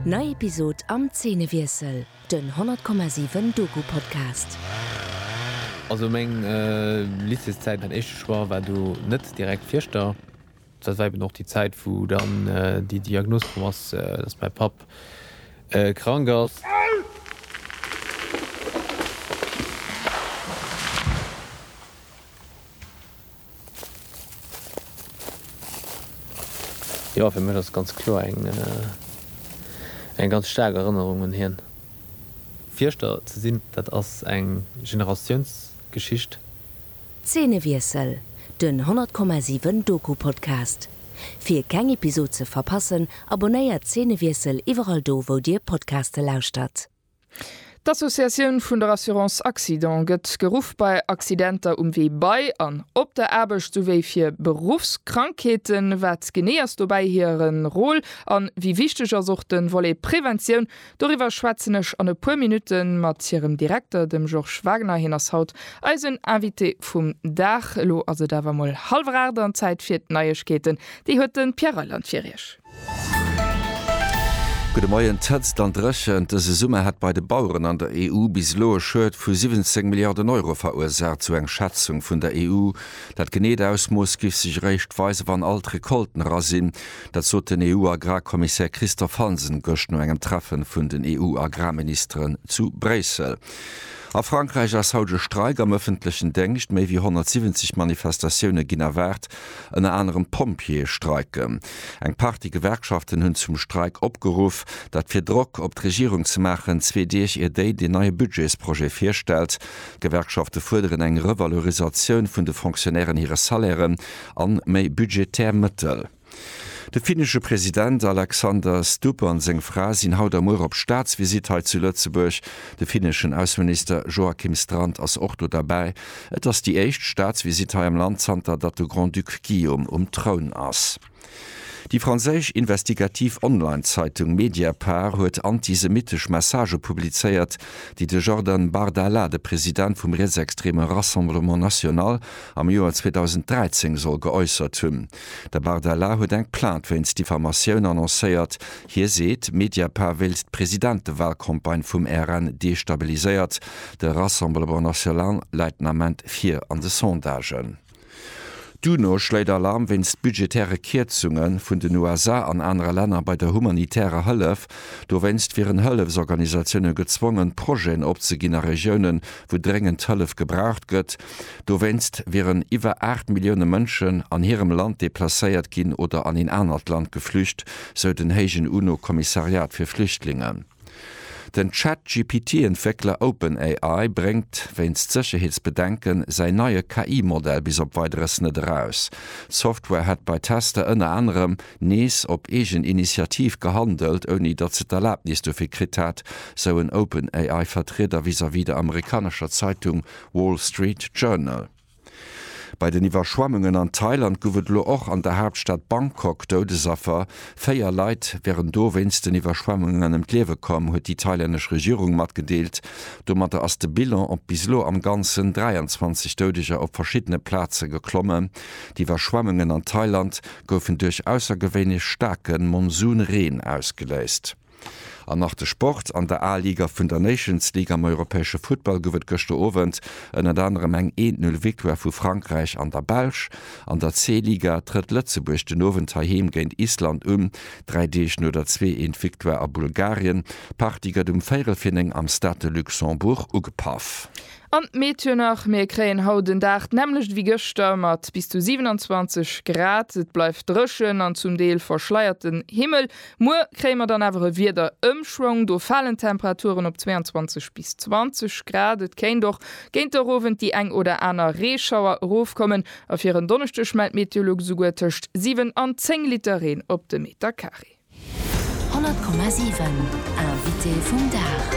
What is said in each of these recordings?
Nei Episod am Zeenewiessel, den 100,7 Doku-Podcast. Also meng Lycéeszäit, mäin éischte Choix war do net direkt Fierschter. Dat war eben och déi Zäit, wou dann déi Diagnos komm ass, dass mäi Papp krank ass. Jo, fir mech ass et ganz kloer eng eng ganz staark Erënnerung un hien. Fierschter ze sinn, dat ass eng Generatiounsgeschicht. Zeenewiessel, Den 100,7 Doku Podcast. Fir keng Episod ze verpassen, abonnéiert Zeenewiessel iwwerall do wou dir Podcaste lauschtert. D'Associatioun vun der Assurance Accident gëtt geruff bei Accidenter um Wee bei an op der Aarbecht souwéi fir Beruffskrankheeten. Wat genee ass dobäi hire Rôle an wéi wichteg ass och de Volet Preventioun? Doriwwer schwätzen ech an e puer Minutte mat hirem Direkter, dem Georges Wagner. Hien ass haut eisen Invité vum Dag. Elo ass et awer mol hallwer aacht an Zäit fir d'Neiegkeeten. Déi huet de Pierre Reyland fir iech. Gudde Moien, D'Hëtzt an d'Dréchent dëse Summer hätt bei de Baueren an der EU bis elo e Schued vu 17 Milliarden Euro verursaacht, sou eng Schätzung vun der EU. Dat geneet Ausmooss giff sech eréischt weisen, wann all d'Recolten era sinn. Dat sot den EU-Agrarkommissär Christophe Hansen gëscht no engem Treffen vun den EU-Agrarministeren zu Bréissel. A Frankräich ass haut e Streik am ëffentlechen Déngscht. Méi wéi 170 Manifestatioune ginn erwaart. Ënner anerem Pompjeeë streiken. Eng Partie Gewerkschaften hunn zum Streik opgeruff. Dat fir Drock op d'Regierung ze maachen, zwee Deeg ier déi den neie Budgetsprojet virstellt. D'Gewerkschafte fuerderen eng Revalorisatioun vun de Fonctionnairen hire Salairen an méi budgetär Mëttel. De finnesche President Alexander Stubb an seng Fra sinn haut a muer op Staatsvisitt hei zu Lëtzebuerg. De finneschen Ausseminister Joakim Strand ass och do derbäi. Et ass déi éischt Staatsvisitt hei am Land zanter datt de Grand-Duc Guillaume um Troun ass. Déi franséisch investigativ Online-Zeitung Mediapart huet antisemittesch Messagë publizéiert, déi de Jordan Bardella, de President vum rietsextreme Rassemblement National, am Joer 2013 soll geäussert hunn. De Bardella huet eng Plainte wéinst Diffamatioun annoncéiert. Hie seet, Mediapart wéilt d'Presidentewahlcampagne vum RN destabiliséiert. De Rassemblement National läit den Ament vir an de Sondagen. D'UNO schléit Alarm wéinst budgetäre Kierzunge vun den USA an anere Länner bei der humanitärer Hëllef. Dowéinst wieren Hëllefsorganisatioune gezwongen, Projeten opzeginn a Regiounen, wou dréngend Hëllef gebraucht gëtt. Dowéinst wieren iwwer 8 Millioune Mënschen an hirem Land deplacéiert ginn oder an een anert Land geflücht, sou den héijen UNO-Kommissariat fir Flüchtlingen. Den Chat-GPT-Entwéckler OpenAI bréngt, wéinst Sécherheetsbedenken, säin neie KI-Modell bis op Weideres net eraus. D'Software hätt bei Tester ënner anerem nees op eegen Initiativ gehandelt, ouni datt se d'Erlabnis dofir kritt hätt, sou en OpenAI-Vertrieder vis-à-vis der amerikanescher Zeitung Wall Street Journal. Bei den Iwwerschwemmungen an Thailand gouf et elo och an der Haaptstad Bangkok Doudesaffer. Véier Leit wären do wéinst den Iwwerschwemmungen ëm d'Liewe komm, huet déi thailännesch Regierung matgedeelt. Domatter ass de Bilan op bis elo am Ganzen 23 Doudeger op verschiddene Plaze geklommen. D'Iwwerschwemmungen an Thailand goufen duerch aussergewéinlech staarke Monsunreen ausgeléist. An nach de Sport, An der A-Liga vun der Nations League am europäesche Futtball gouf et gëschter Owend ënnert anerem eng Eent-Null-Victoire vu Frankräich an der Belsch. An der C-Liga trëtt Lëtzebuerg den Owend heiheem géint Island un, dräi Deeg no der Zwee-Eent-Victoire a Bulgarien. D'Partie gëtt um véirel vir néng am Stade de Luxembourg ugepaff. An d'Meteo nach, Mir kréien haut en Dag d'nämmlecht wéi gëschter mat bis zu 27 Grad. Et bleift dréchen an zum Deel verschleierten Himmel. Muer kréie mer dann awer e Wiederëmschwong, do falen d'Temperaturen op 22 bis 20 Grad. Et kéint och géint de Owend déi eng oder aner Reeschauer erofkommen a fir en Donneschdeg mellt d'Meteolux esouguer tëscht 7 an 10 Liter Reen op de Meter Carré. 100,7 Invité vum Dag.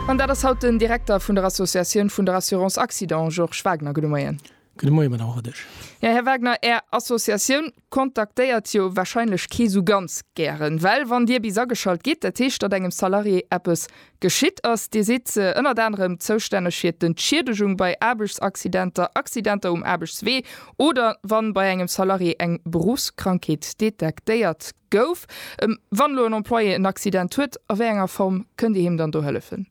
An dat ass haut den Direkter vun der Associatioun vun der Assurance Accident, Georges Wagner. Gudde Moien. Gudde Moie, Madame Rodesch. Jo, Här Wagner, Är Associatioun kontaktéiert jo wahrscheinlech kee sou ganz gären. Well wann Dir bis ageschalt gitt, dat heescht, datt engem Salarié eppes geschitt ass. Dir sidd ënnert anerem zoustänneg fir d'Entschiedegung bei Aarbechtsaccidenter, Accidenter um Aarbechtswee oder wa bei engem Salarié eng Beruffskrankheet detektéiert gouf. Wann elo en Employé en Accident huet, a wéi enger Form kënnt Dir him dann do hëllefen?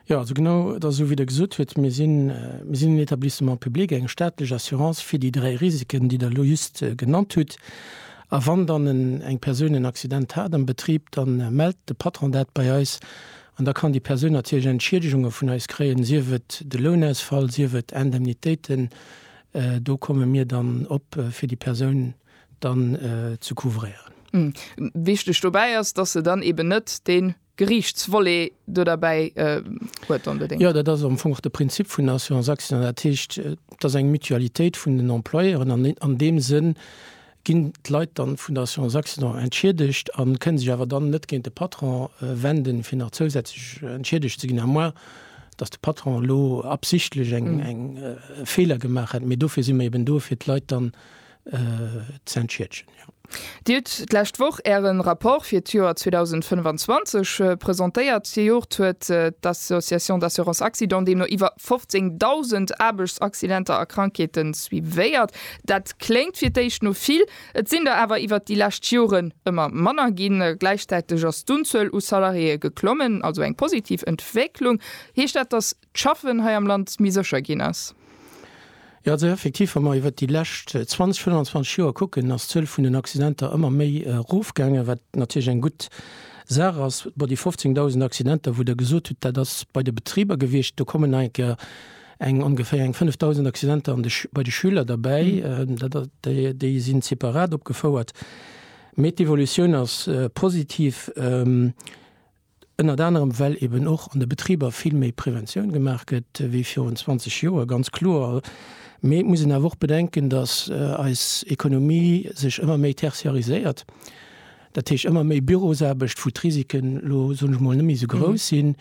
Jo, also genau et ass esou wéi Der gesot huet, mir sinn en Etablissement public, eng staatlech Assurance fir déi dräi Risiken, déi Der elo just genannt hutt. A wann dann eng Persoun en Accident hat am Betrib, da mellt de Patron dat bei eis an da kann déi Persoun natierlech Entschiedegunge vun eis kréien, sief et de Lounausfall, sief et Indemnitéiten. Do komme mir dann op fir déi Persoun dann ze couvréieren. Wichteg dobäi ass, dass se dann eeben net dee. Geriichtsvolet do derbäi huet. Dann bedéngt. Jo, dat ass am Fong och de Prinzip vun der Assurance accident. Dat heescht, et ass eng Mutualitéit vun den Employeuren an an deem Sënn ginn d'Leit dann vun der Assurance accident entschiedegt a kënnen sech awer dann net géint de Patron wenden, fir nach zousätzlech entschiedegt ze ginn, à moins dass de Patron elo absichtlech eng Feeler gemaach hätt. Mee dofir si mer eben do, fir d'Leit dann z'entschiedgen. Dir hutt d'lescht Woch Äre Rapport fir d'Joer 2025 presentéiert. Zejoert huet d'Association d'assurance accident deemno iwwer 15.000 Aarbechtsaccidenter a Krankheete suivéiert. Dat kléngt fir d'éischt no vill, et sinn der awer iwwer déi lescht Joren ëmmer manner ginn. Gläichzäiteg ass d'Unzuel u Salariéë geklommen, also eng positiv Entwécklung. Heescht dat, datt d'Schaffen hei am Land méi sécher ginn ass. Jo, also effektiv, wa mer iwwert déi lescht 20, 25 Joer kucken, ass d'Zuel vun den Accidenter ëmmer méi erofgaangen, wat natierlech eng gutt Saach ass. Bon, déi 15.000 Accidenter, wou Der gesot hutt, dat ass bei de Betriber gewiescht, do kommen nach eng Kéier eng ongeféier eng 5.000 Accidenter an de bei de Schüler derbäi. Dat ass, déi sinn separat opgefouert. Mee d'Evolutioun ass positiv. Ënnert anerem well eben och an de Betriber vill méi Preventioun gemaach gëtt wéi virun 20 Joer, ganz kloer. Mee et muss een awer och bedenken, datt eis Ekonomie sech ëmmer méi tertiariséiert. Dat heescht ëmmer méi Bürosaarbecht, wou d'Risiken elo, soen ech mol, net méi esou grouss sinn.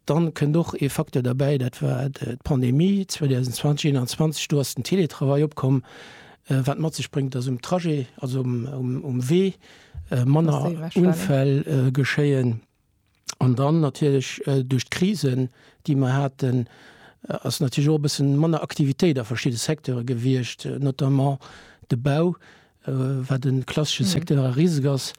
Dann kënnt och ee Facteur derbäi, dat war d'Pandemie 2020, 21, do ass den Télétravail opkomm, wat mat sech bréngt, datt um Trajet, also um Wee, manner Unfäll geschéien. An dann natierlech duerch d'Krisen, déi mer haten, ass natierlech och e bësse manner Aktivitéit a verschidde Secteure gewiescht, notamment de Bau, wat e klassesche Secteur a riseg ass.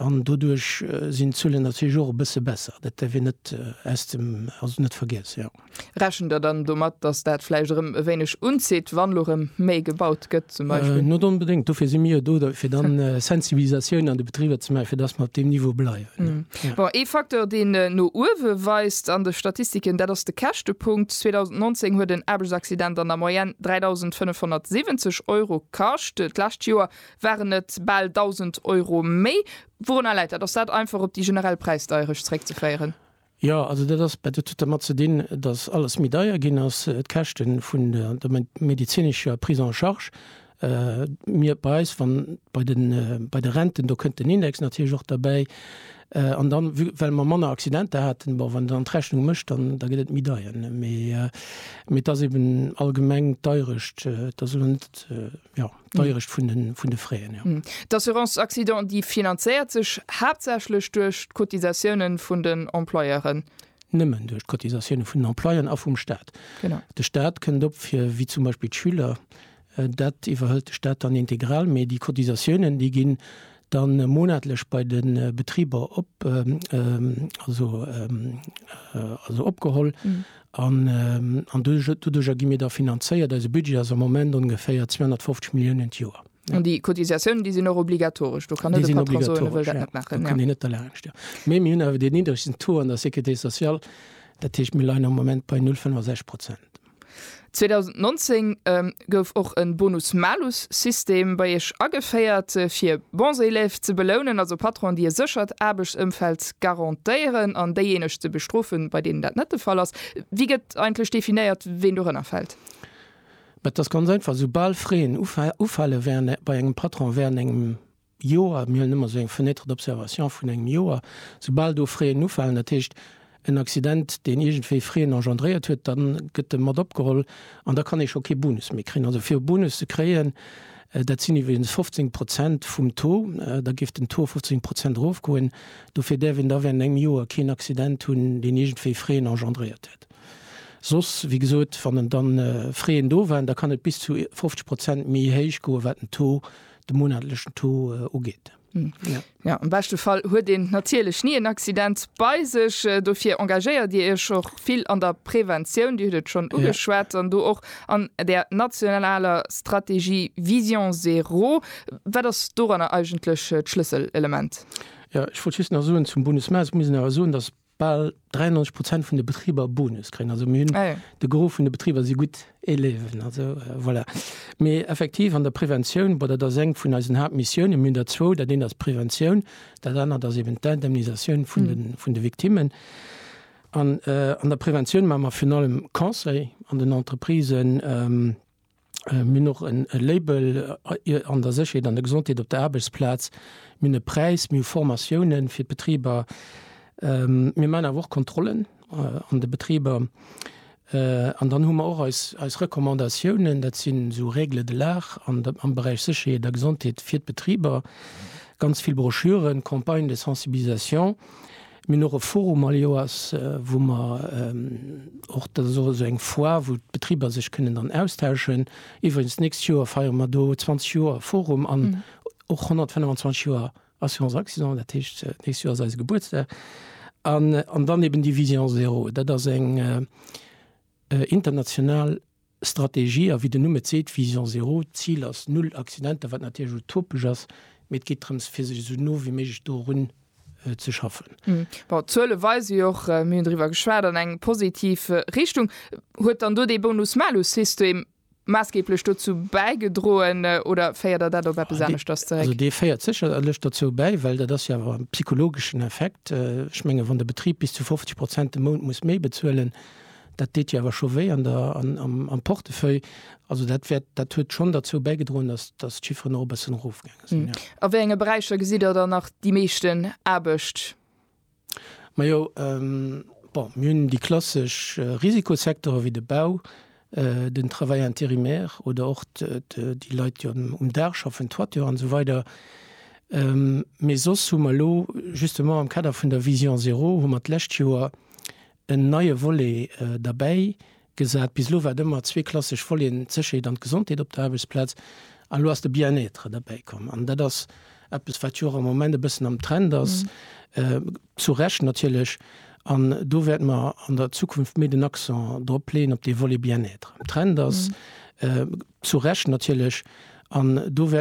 An doduerch sinn d'Zuelen natierlech och e bësse besser. Dat däerf een net aus dem, also net vergiessen. Rechent der dann domat, dass dat vläicht erëm e wéineg unzitt, wann elo erëm méi gebaut gëtt zum Beispill? Net onbedéngt. Dofir si mir jo do, fir da Sensibilisatioun an de Betriber ze maachen, fir dass mer op deem Niveau bleiwen. Bon, ee Facteur, deen no uewe weist an de Statistiken, dat ass de Käschtepunkt. 2019 huet en Aarbechtsaccident an der Moyenne 3.570 Euro kascht. D'lescht Joer waren et bal 1.000 Euro méi. Wourunner läit dat? Ass dat einfach op déi generell Präisdeierecht zeréckzeféieren? Jo, also dat ass, dat huet dermat ze dinn, datt alles méi deier ginn ass, d'Käschte vun der medezinescher Prise en charge. Mir, bei eis, wann bei de, bei de Renten, do kënnt den Index natierlech och derbäi. An dann, vu well mer manner Accidenter haten, bon, wann een dann d'Rechnung mécht, dann, da gëtt et méi deier. Mee, mee et ass eeben allgemeng d'Deierescht, et ass elo net, jo. d'Deierecht vun de, vun de Fräen, jo. D'Assurance accident, déi finanzéiert sech haaptsächlech duerch d'Cotisatioune vun den Employeuren? Nëmmen duerch d'Cotisatioune vun den Employeuren a vum Staat. Genau. De Staat kënnt op fir, wéi zum Beispill d'Schüler, dat iwwerhëlt de Staat dann integral, mee déi Cotisatiounen, déi ginn dann monatlech bei de Betriber op, also, also opgeholl. Mhm. An, an doduercher gi mir da finanzéiert. Eise Budget ass am Moment ongeféier 250 Milliounen d'Joer. An déi Cotisatiounen, déi sinn och obligatoresch, do kann net e Patron soen, e wëll dat net maachen. Kann een net derlaanscht, jo. Mee mir hunn awer dee niddregsten Taux an der Sécurité sociale, dat heescht, mir leien am Moment bei 0,65 Prozent. 2019 gouf och e Bonus-Malus-System bei Iech ageféiert, fir bons élèves ze belounen, also Patronen, déi e séchert Aarbechtsëmfeld garantéieren, an déijéineg ze bestrofen, bei deenen dat net de Fall ass. Wéi gëtt eigentlech definéiert, ween dorënner fält? Dat ass ganz einfach, Esoubal Fréen ufalen bei engem Patron während engem Joer, mir huelen ëmmer esou eng Fenêtre d'observation vun engem Joer, soubal do Fréen ufalen, dat heescht en Accident, deen iergendwéi Fréen engendréiert huet, da gëtt e mat opgeholl an da kann ee scho kee Bonus méi kréien. Also fir e Bonus ze kréien, dat sinn iwweregens 15 Prozent vum Taux, da géif den Taux 15 Prozent erofgoen, dofir däerf een da während engem Joer keen Accident hunn, deen iergendwéi Fréen engendréiert huet. Soss, wéi gesot, wann dann Fréen do waren, da kann et bis zu 50 Prozent méi héich goen, wat den Taux de monatlechen Taux äh, ugeet. Hm. Ja. ja am beste Fall huet den natierlech nie en Accident bei sech äh, dofir engagéiert Dir Iech och vill an der Präventioun, Dir huet schon ugeschwert an ja. du och an der nationaler Strategie Vision Zero. Wat ass doranner eigentlech äh, d'Schlüsselelement? Ja, ich wollte just nach soen zum Bundesmaß muss awer soen, dass bal 93 Prozent vun de Betriber Bonus kréien. Also mir hunn ah, ja. de Gro vun de Betriber si gutt Eleven. Also äh, voilà. Mé effektiv an der Preventioun bei der der seng vun eisen Hauptmissioune minn der zwou, dat deen ass Preventioun, dat annert ass eben d'Indemnisatioun vun mhm. vun de Viktimmen. An, äh, an der Preventioun ma mer vun allem Conseil an den Entreprisen. Ähm, Mir hunn och e Label an der Sécherheet an der Gesondheet op der Aarbechtsplaz. Mir hunn e Präis, mir hu Formatiounen fir d'Betriber. Mir maachen awer och Kontrollen an de Betriber. An dann hu mer och eis Recommandatiounen, dat sinn esou Règles de l'art am Beräich Sécherheet a Gesondheet fir d'Betriber. Ganz vill Broschüren, Campagnes de sensibilisation. Mir hunn och e Forum all Joers, wou mer och, dat ass och esou eng Foire, wou d'Betriber sech kënnen dann austauschen. Iwwregens, d'nächst Joer feiere mer do 20 Joer Forum an och 125 Joer Assurance Accident. Dat heescht, d'nächst Joer ass eise Gebuertsdag. An dann eben déi Vision zéro, dat ass eng international. Strategie a wéi den Numm et seet, Vision zéro, d'Zil ass null Accidenter, wat natierlech utopesch ass, mee et geet drëms fir sech esou no wéi méiglech dorun ze schaffen. Bon, d'Zuele weise jo och, mir hunn driwwer geschwat, an eng positiv Richtung. Huet dann do dee Bonus-Malus-System maassgeeblech dozou bäigedroen oder féiert Der dat op eppes aneschters zeréck? Also dee féiert sécherlech dozou bäi, well dat ass jo awer e psychologeschen Effekt. Ech menge wann de Betrib bis zu 50 Prozent de Mount muss méi bezuelen, Dat deet Dir awer scho wéi an der, am Portefeuille. Also dat wäert, dat huet schonn derzou bäigedroen, datt, datt d'Chifferen och e bëssen erofgaange sinn, jo. A wéi enge Beräicher gesitt Der dann nach déi meeschten Aarbecht? Majo, bon, mir hunn déi klassesch Risikosecteuren, wéi de Bau, den Travail intérimaire oder och déi Leit, déi um Daach schaffen, Toiture an esou weider. Mee soss hu mer elo, justement am Kader vun der Vision zéro, hu mer d'lescht Joer en neie Volet derbäi gesat. Bis elo war et ëmmer zwee klassesch Voleten, d'Sécherheet an d'Gesondheet op der Aarbechtsplaz, an elo ass de Bien-être derbäi komm. An dat ass eppes, wat jo och am Moment e bëssen am Trend ass, zu Recht natierlech. An do wäerte mer an der Zukunft méi den Accent drop leeën, op dee Volet Bien-être am Trend ass, zu Recht natierlech. An do wäerte.